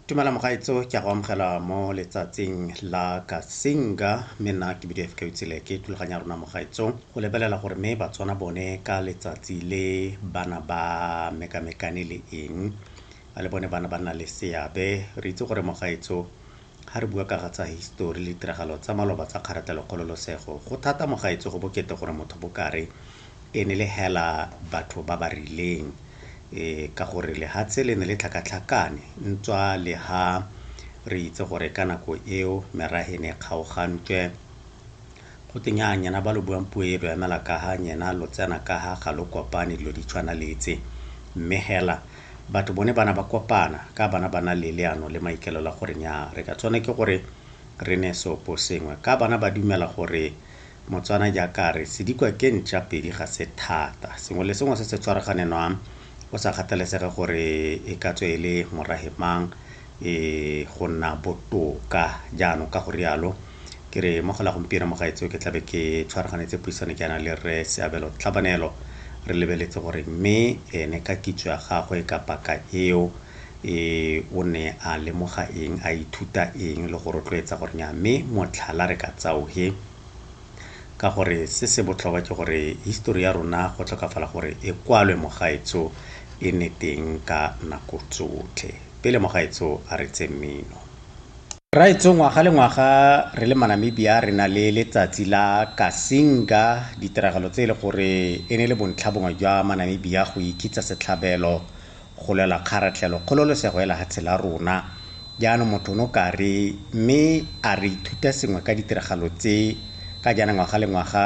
tumela mogaetso ke a go amogela mo letsatsing la kasinga mme nna ke bidio fk utsile ke thulaganya rona mogaetso go lebelela gore mme batswana bone ka letsatsi le bana ba mekamekane le eng le bone bana ba nna le seabe re itse gore mogaetso Ga re bua kaga tsa hisitori le ditiragalo tsa maloba tsa kgaratlelokgololosego, go thata mo gaetsho go bokete gore motho bo kare e ne le hela batho ba ba rileng ka gore lehatshe le ne le tlhakatlhakane ntswa le ha re itse gore ka nako eo merahe ne e kgaogantswe Gote nyaa nyena ba lo buang puo e lo emela kaha nyena lo tsena kaha ga lo kopane dilo di tshwana le tse. Mme hela batho bone bana ba kopana ka bana ba na le leano le maikelelo a gore nyaa re ka tsone ke gore re ne seopo sengwe ka bana ba dumela gore Motswana jaaka re sedikwa ke ntša pedi ga se thata sengwe le sengwe se se tshwaragane nwa go sa kgathalesege gore e ka tswe e le morahe mang e go nna botoka jaanong ka go rialo ke re mo gola gompieno mo gaetseo ke tlabe ke tshwaraganetse puisano ke yana le rre seabelo tlhabanelo re lebeletse gore mme ene ka kitso ya gagwe ka paka eo e o ne a lemoga eng a ithuta eng le go rotloetsa gore nya mme motlhala re ka tsaoge ka gore se se botlhokwa ke gore histori ya rona go tlhokafala gore e kwalwe mogaetso e ne teng ka nako tsotlhe pele mogaetso a re tse mmino Rraetsho ngwaga le ngwaga re le maNamibia re na le letsatsi la Kasinga, ditiragalo tse e le gore e ne le bontlhabongwe jwa maNamibia go ikitsa setlhabelo go lwela kgaratlhelo, kgololosego ya lehatshe la rona. Jaanong motho o no ka re, mme a re ithuta sengwe ka ditiragalo tse, ka jaana ngwaga le ngwaga,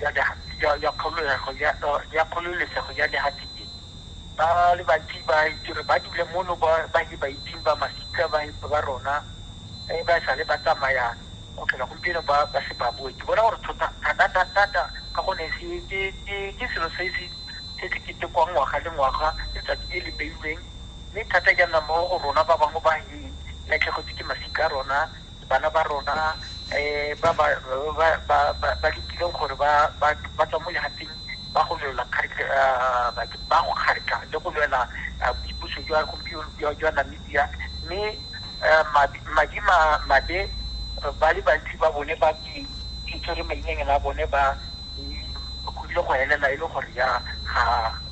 ya Kgololesego ya Lehatsike ba le bantsi ba itse gore ba dule mono ba ne ba itseng ba masika ba rona e ba sale ba tsamaya go tlhola gompieno ba se ba boe ke bona gore thata-thata-thata ka gonne ke selo se se ketekwang ngwaga le ngwaga letsatsi le le beilweng mme thata jaana mo go rona ba bangwe ba latlhegetswe ke masika a rona Bana ba rona ba ba letileng gore ba tswa mo lehatseng ba go lwela ba go kgatlha le go lwela boipuso jwa gompieno jwa Namibia mme madi mabe ba le bantsi ba bone ba ke tshwere mainyanyana a bone ba go ile go helela e le gore ya ga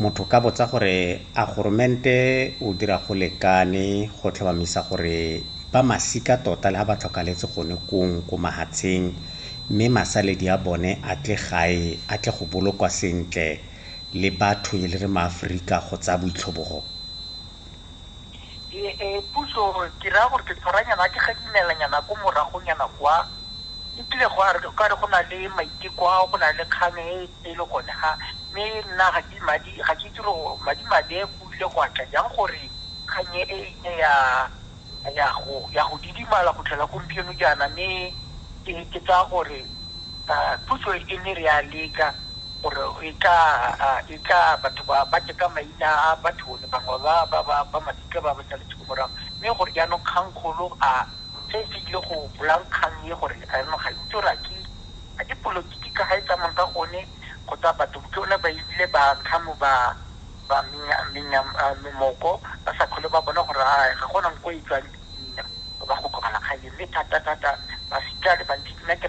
Motho ka botsa gore a goromente o dira go lekane go tlhomamisa gore ba masika tota le ha ba tlhokaletse gone kong ko mahatsheng mme masaledi a bone a tle gae a tle go bolokwa sentle le batho e le re maAforika go tsaya boitlhobogo. Puso ke raya gore ke tshwaranyana a ke gadimelanyana ko moragonyana kwa, e kile gwa re go na le maiteko ao go na le kgang e e le gone ga mme nna ga ke madi ga ke itse gore madi madi go ile go atla jang gore kganye e ile ya ya go ya go didimala go tlhola gompieno jaana mme ke ke tsaya gore puso e ne re ya leka gore e tla e tla batho ba ba teka maina a batho le bangwe ba ba ba ba masika ba ba sa letse morago mme gore jaanong kgang kgolo a se se ile go bolang kgang e gore a nong ga itse gore a ke A ke polotiki ka ga e tsamang ka gone go tsaya batho ke one ba ebile ba ntlha mo ba ba menya moko ba sa tlhole ba bona gore a ga gona nko e tswang dipina ba go tlogela kgang e mme thata thata ba sika le bantsi nna ke